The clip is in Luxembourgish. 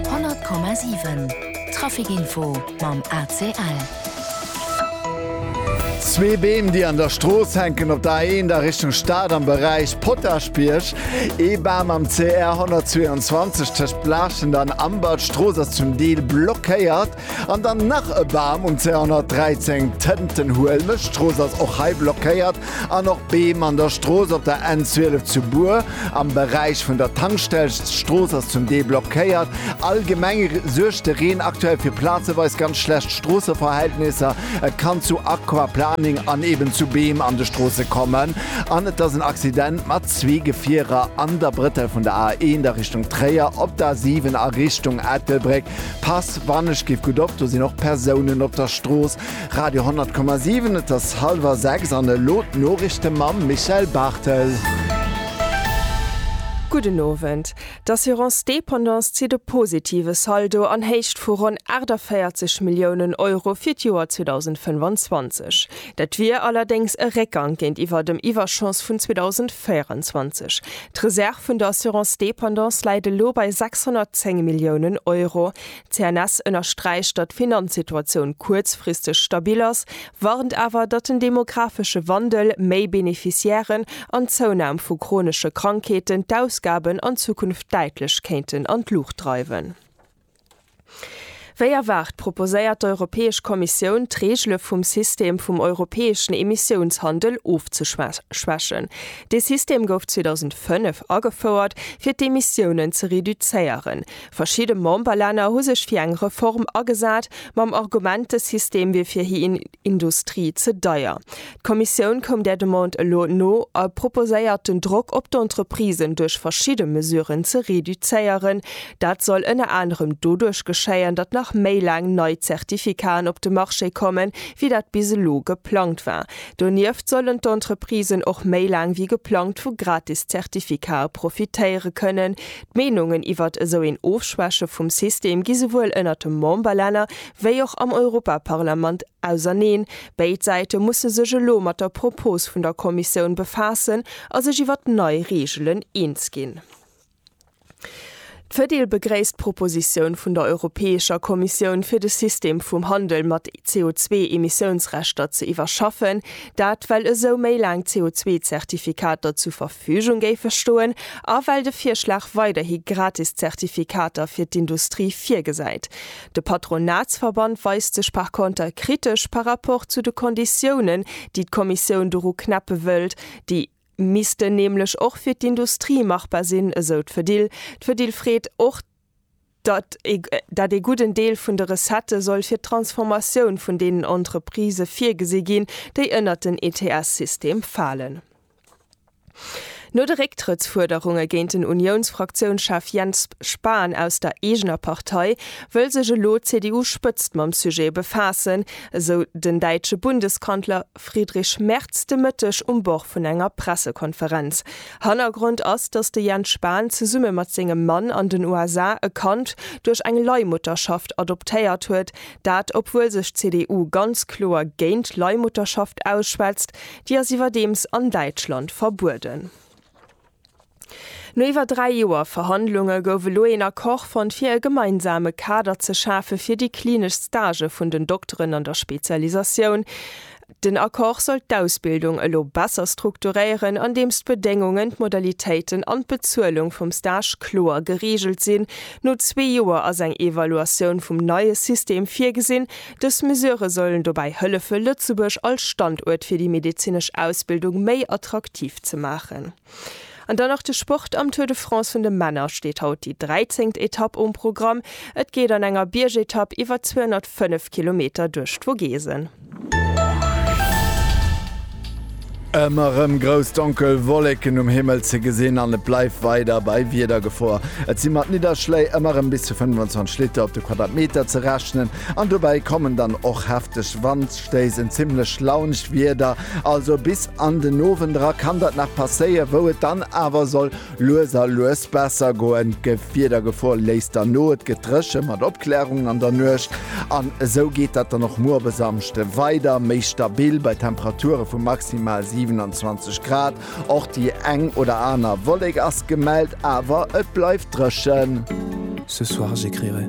100,7 Trafic-Info mam ACL. Zwee Beem, déi an der Strooss hänken, op der A1 a Richtung Stad am Beräich Potaschbierg. Ee Bam am CR 122 tëscht Blaschent an Ambert. D'Strooss ass zum Deel blockéiert. An dann nach e Bam um 213, d'Tëntenhuelmech Strooss ass och hei blockéiert an och Beem an der Strooss op der N 12 zu Bur am Beräich vun der Tankstell. D'Strooss ass zum Deel blockéiert. Allgemeng suergt de Reen aktuell fir plazeweis ganz schlecht Stroosseverhältnisser. Et kann zu Aquaplaning an eben zu Beem an de Stroosse kommen an et ass en Accident mat zwee Gefierer an der Brëttel vun der A1 a Richtung Tréier, op der A7 a Richtung Ettelbréck. Pass wann ech giff gutt op, do sinn och Persounen op der Strooss. Radio 10,7 Et ass hallwer 6 an elo d'Noriichte mam Michel Barthel. Gudden Owend. D'Assurance Dépendance zitt e positive Saldo an Héicht vu ronn 48 Milliounen Euro fir d'Joer 2025. Dat wier allerdéngs e Réckgang géintiwwer dem Iwwerschoss vun 2024. D'Reserv vun der Assurance dépendance läit elo bei 610 Milliounen Euro. D'CNS ënnersträicht, datt d'Finanzsituatioun kuerzfristeg stabil ass, warnt awer, datt den demographesche Wandel, méi Beneficiairen an d'Zounam vu chronesche Krankheeten d'Ausgaben an Zukunft däitlech kéinten an d'Luucht dreiwen. Wéi erwaart proposéiert d'Europäesch Kommissioun, d'Reegele vum System vum europäeschen Emissiounshandel ofzeschwächen. Dee System gouf 2005 agefouert, fir d'Emissiounen ze reduzéieren. Verschidde Memberlänner hu sech fir eng Reform agesat, mam Argument, de System wier fir hir Industrie ze deier. D'Kommissioun koum där Demande elo no a proposéiert den Drock op d'Entreprisen duerch verschidde Mesuren ze reduzéieren. Dat soll ënner anerem doduerch geschéien, datt nach méi laang nei Zertifikaten op de Marché kommen, wéi dat bis elo geplangt war. Donieft sollen d'Entreprisen och méi laang wéi geplangt vu gratis Zertifikate profitéiere kënnen. D'Meenungen iwwert esou een Ofschwäche vum System gi souwuel ënnert de Memberlänner wéi och am Europaparlament Auserneen. Béid Säite musse sech elo mat der Propos vun der Kommissioun befaassen a sech iwwer d'nei Reegelen eens ginn. D'Fedil begréisst d'Propositioun vun der Europäescher Kommissioun fir de System vum Handel mat CO2-Emissiounsrechter ze iwwerschaffen, dat well esou méi laang CO2-Zertifikater zu Verfügung géife stoen a well de Virschlag weiderhi gratis Zertifikater fir d'Industrie virgesäit. De Patronatsverband weist sech par conter kritesch par rapport zu de Konditiounen, déi d'Kommissioun doru knäppe wëllt. Déi missten nämlech och fir d'Industrie machbar sinn, esou d'Fedil. D'Fedil freet och, datt dat ee gudden Deel vun de Recettë soll fir d'Transformatioun vun deenen Entreprisë virgesi ginn, déi ënnert den ETS-System falen. No de Récktrëttsfuerderunge géint den Uniounsfraktiounschef Jens Spahn aus der eegener Partei, wëll sech elo d'CDU-Spëtzt mam Sujet befaassen, esou den däitsche Bundeskanzler Friedrich Merz de Mëtteg um Bord vun enger Pressekonferenz. Hannergrond ass, datt de Jens Spahn zesumme mat sengem Mann an den USA e Kand duerch eng Leihmutterschaft adoptéiert huet, dat obwuel sech d'CDU ganz kloer géint Leihmutterschaft ausschwätzt. Déi ass iwwerdeems an Däitschland verbueden. No iwwer dräi Joer Verhandlunge gouf elo een Accord fonnt fir e gemeinsame Kader ze schafe fir déi klinesch Stagë vun den Dokteren an der Spezialisatioun. Den Accord soll d'Ausbildung elo besser strukturéieren, andeems d'Bedéngungen, d'Modalitéiten an d'Bezuelung vum Stage kloer gereegelt sinn. No zwee Joer ass eng Evaluatioun vum neie System virgesinn. Dës Mesure sollen dobäi hëllefe Lëtzebuerg als Standuert fir déi medezinesch Ausbildung méi attraktiv ze maachen. An dann nach de Sport, Am Tour de France vun de Männer steet haut déi 13. Etapp um Programm. Et geet an enger Biergetapp iwwer 205 Kilometer duerch d'Vogesen. Ëmmer rëm grouss donkel Wolleken um Himmel ze gesinn an et bleift weider bei Wiedergefor. Et si mat Nidderschléi ëmmer rëm bis zu 25 Liter op de Quadratmeter ze rechnen. An dobäi kommen dann och hefteg Wandstéiss, en zimmlech launscht Wieder. Also bis an den Owend era kann dat nach passéie wou et dann awer soll lues a lues besser goen. D'Gewiedergefor léisst dann no, et gëtt dréche mat Opklärungen an der Nuecht an esou geet dat dann och muer op e Samschde weider méi stabil bei Temperature vu maximal 27 Grad. Och déi eng oder aner Wollek ass gemellt, awer et bleift dréchen. Ce soir j'écrirai.